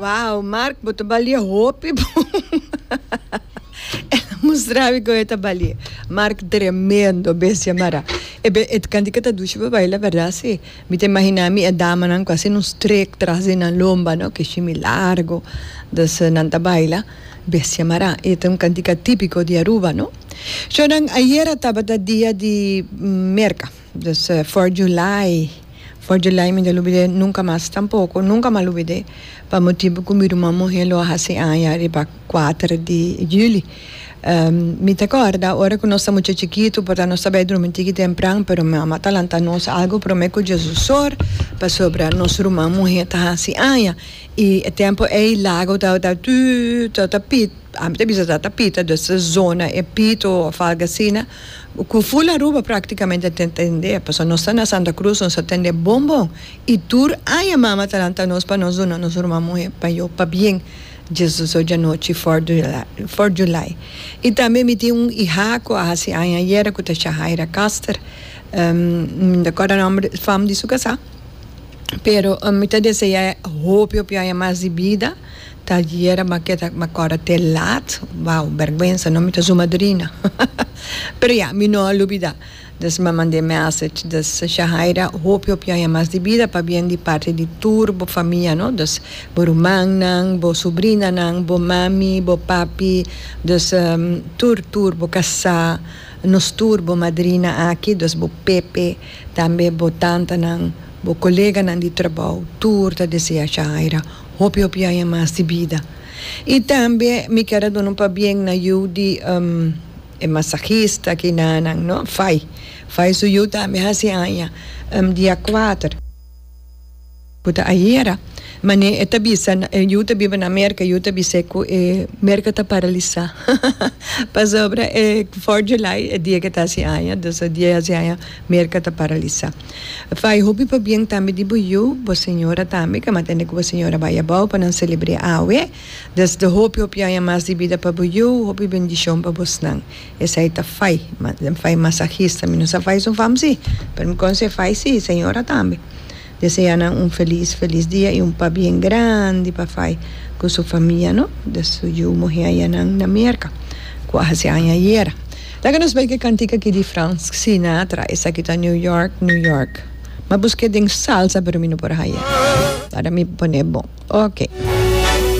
Wow, Mark, bo ta balie hopi bo. El mostravi con e ta balie. Mark, tremendo, bestia mara. E be, et kanti ka ta dushi pa baila, verdad? Sí. Mi ta imagina mi e damanan ku a haciendo un strek tras di nan lomba, no? Ke shimi largo. Dus nan ta baila. Bestia mara. E ta un kantika típico di Aruba, no? Sho nan, ayera tabata dia di merka. Dus for July, for July mi ta lubid'é nunka mas tampoko, nunka m'a lubid'é pa motibu ku mi ruman muhé lo a hasi aña riba kuater di juli. Mi ta kòrda ora ku nos ta mucha chikitu porta nos ta bai drumi tiki tempran pero mama ta lanta nos algu promé ku Jesus sor pasobra nos ruman muhé ta hasi aña i e tempu ei lago tabata tudu tabata pita, ami ta bisa tabata pita, dus ta zona e pito òf algu asina Cu full Aruba practicamente a tende, pasobra nos ta na Santa Cruz, nos a tende bon bon y tur aña Mama ta lanta nos pa nos duna nos ruman muhe pa yo pa bien Jesus oye anochi Fourth of July, Fourth of July. Y tambe mi tin un iha cu a haci aña ayera cu ta Shahaira Caster, mi no ta acorda nomber fam di su casa, pero mi ta desea hopi hopi aña mas di bida. Ta yera ma ke ta ma kòrda te laat. Wou bèrgwensa no mi ta su madrina pero ya mi no a lubida des m'a mand'e message des Shahaira hopi hopi aña mas di bida pa bien di parti di tur bo famia no des bo rumannan bo subrinanan bo mami bo papi des tur tur bo kasá nos tur bo madrina aki des bo Pepe tambe bo tantanan bo koleganan di trabou tur ta desea Shahaira Hopi hopi aña mas di bida. Y tambe mi ker a duna un pabien na yu di e masajista kinanan no, Fai, Fai su yu tambe hasi aña dia kuater, ku ta ayera, mane e ta bisa yu ta biba na Merka, yu ta bis'e ku e Merka ta paralisa pasobra e Fourth July e dia ke ta hasi aña, dus e dia hasi aña Merka ta paralisa. Fai hopi pa bien tambe di bo yu, bo señora tambe, kama tende ku bo señora bai abou pa nan selebr'é awe. Desde hopi hopi aña mas di bida pa bo yu, hopi bendishon pa bosnan. Esei ta fai, den fai masahista. Mi no sa fai esun fam si, pero mi konsé fai si, señora tambe. Desea nan un felis felis dia i un pabien grandi pa fai ku su famia no, den su yu muhé ayanan na Merka, ku a hasi aña ayera. Laga nos bai ke kantika ki di Frank Sinatra, esaki ta New York, New York. Ma buske den salsa pero mi no por haya. Para mi pone bon. Ok.